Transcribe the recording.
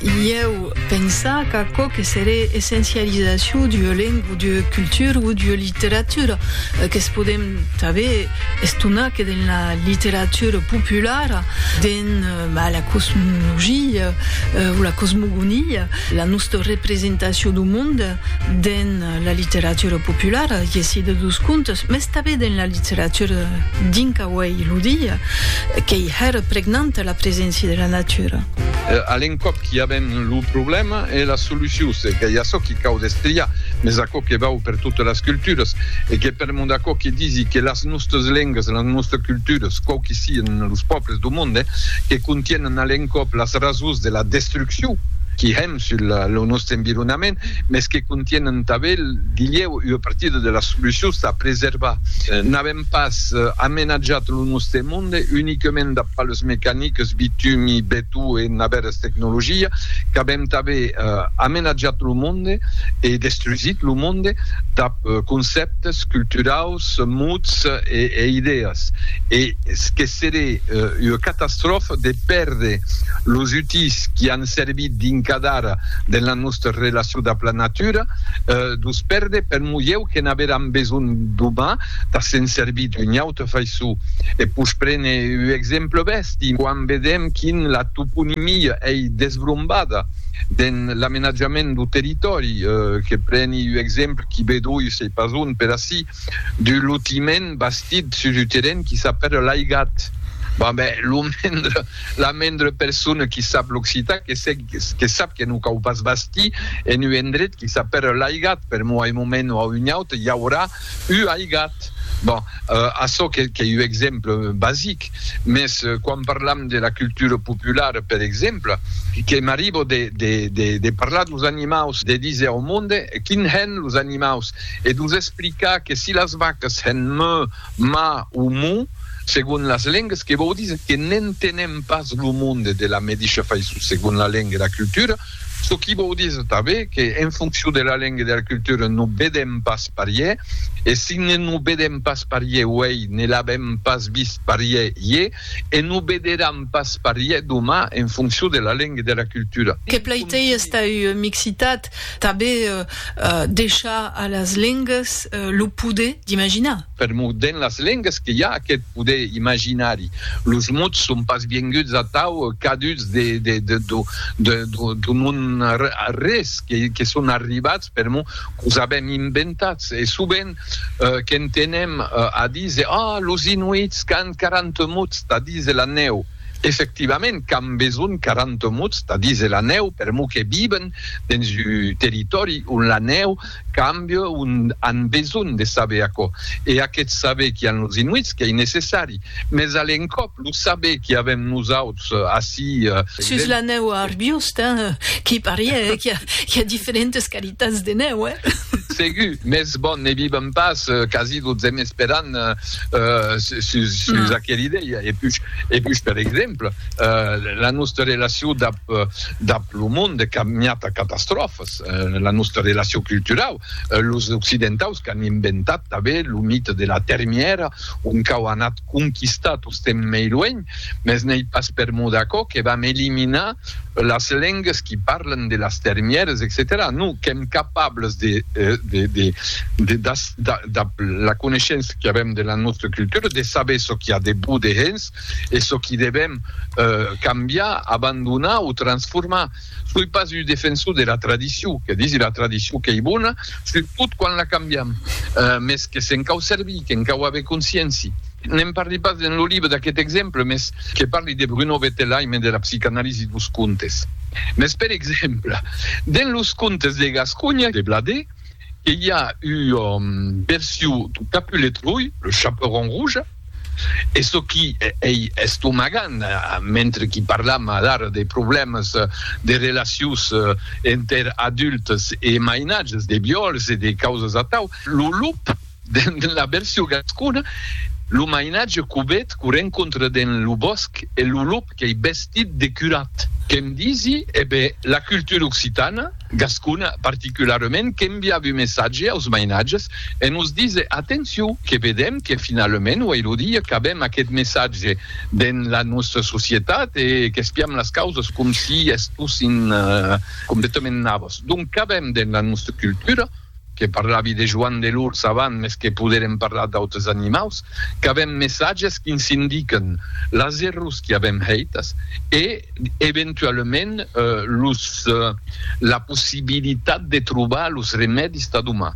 Ieu pensa qu'aquò que seré essencializacion d'ua lenga o d'ua cultura o d'ua literatura, que's podem tanben estonar que dens la literatura populara, dens la cosmologia o la cosmogonia, la nòsta representacion dau monde, dens la literatura populara, i ací de dus contes, mès tanben dens la literatura dinca uèi lo dia, qu'ei hèra pregnanta la preséncia de la natura. A l'encòp qu'i avèm lo problèma e la solucion, se qu'ei açò qu'i cau destriar, mès aquò que vau per totas las culturas, e que per mon d'aquò que disi que las nòstas lengas, las nòstas culturas, quauqu'i sian los pòbles do monde, que contienen a l'encòp las rasons de la destruccion qu'i hèm, sul lo nòstre environament, mès que contienen tanben dilhèu ua partida de las solucions tà preservar. N'avèm pas amenatjat lo nòstre monde uniquement dab palhs mecaniques, bitumi, betó e navèras tecnologia, qu'avèm tanben amenatjat lo monde e destrusit lo monde dab concèptes culturaus, mots e idèas, e que seré ua catastròfa de pèrder los utís qui an servir d'incadar de la nòsta relacion dab la natura, dus perde per mulhèu que n'averàn besonh doma, tà se'n servir d'una auta faiçon. E pus prene uu exemple bèsti, quan vedèm quin la toponimia ei desbrombada den l'amenatjament du territòri, que preni uu exemple qui vedoi sei pas ont per ací, du lotiment bastit sus un terren qui s'apèla l'Aigat. Bon, ben, lo mendre, la mendre persona qui sap l'occitan que sèg, que sap que non cau pas bastir en un endret qui s'apèla l'Aigat, per moi, un moment o a un aute, i aurà un aigat. Bon, açò qu'ei un exemple basic, mès quan parlam de la cultura populara, per exemple, que m'arribo de parlar dos animaus, de díser au monde quin hèn los animaus, e dus explicar que si las vacas hèn mö, ma o mo, segon las lengas, que vòu díser que n'entenem pas lo monde de la medisha faiçon segon la lenga e la cultura, çò qui vòu díser tanben que en foncion de la lenga e de la cultura no vedèm pas parier, e si ne no vedèm pas parier uèi ne l'avèm pas vist parier ier e no vederam pas parier doman en foncion de la lenga e de la cultura. Que plaitéi estar ua mixitat Tanben deishar a las lengas lo poder d'imaginar. Per'mor dens las lengas que i a aqueth poder imaginari. Los mots son pas vienguts atau caduts d'un non arrés, que son arribats per'mor qu'os avèm inventats. E sovent qu'entenem a díser, Ah, los Inuits qu'an 40 mots tà díser la nèu! Efectivament qu'an besonh 40 mots tà díser la nèu, permor que viven dens un territòri ont la nèu cambia, ont an besonh de saber aquò. E aqueth saber qu'i an los Inuits qu'ei necessari, mès a l'encòp lo saber qu'i avèm nosauts ací, Sus la nèu a Arbiosd, hein, qu'i parie qu'i a diferentes qualitats de nèu, hein. Segur, mès bon, ne vivem pas quasi totzemes per an. sus aquela idèia. E pus, e pus per exemple, la nòsta relacion dab, dab lo monde de caminhat a catastròfas, la nòsta relacion culturau, los occidentaus qu'an inventat tanben lo mite de la termièra, ont qu'au anat conquistar tostemps mei luenh, mès n'ei pas per mot d'aquò que vam eliminar las lengas qui parlen de las termières, etcetèra. Non, qu'èm capables de, dab la coneishença qu'avèm de la nòstra cultura, de saber çò qui a de bo dehens e çò qui devèm cambiar, abandonar o transformar. Soi pas un defensor de la tradicion, que disi la tradicion qu'ei bona, surtot quan la cambiam, mes que se'n cau servir, que'n cau aver conscienci. Ne'n parli pas dens lo libre d'aqueth exemple, mes que parli de Bruno Bettelheim e de la psicanalisi dos contes. Mes per exemple, dens los contes de Gasconha de Bladé, que i a ua version du Capulet Rouge, le Chaperon Rouge, e çò qui ei estomagant, mentre qui parlam alara de problèmas de relacions enter adultes e mainatges, de viòls e de causas atau, lo lup, dens la version gascona, lo mainatge cubet qu'o rencontre dens lo bòsc e lo lup qu'ei vestit de curat. Que'm disi, e be, la cultura occitana, gascona particularement, qu'enviavi un messatge aus mainatges e nos dise, atencion, que vedem que finalament uei lo dia qu'avem aqueth messatge dens la nòstra societat e qu'espiam las causes com si estossin completament navas. Donc qu'avem dens la nòstra cultura? que parlavi de Joan de l'Urs avant, mes que poderem parlar d'autres animaus, qu'avem messatges qui ns indiquen las errors qui avem hèitas e eventualament los la possibilitat de trobar los remèdis tà domà.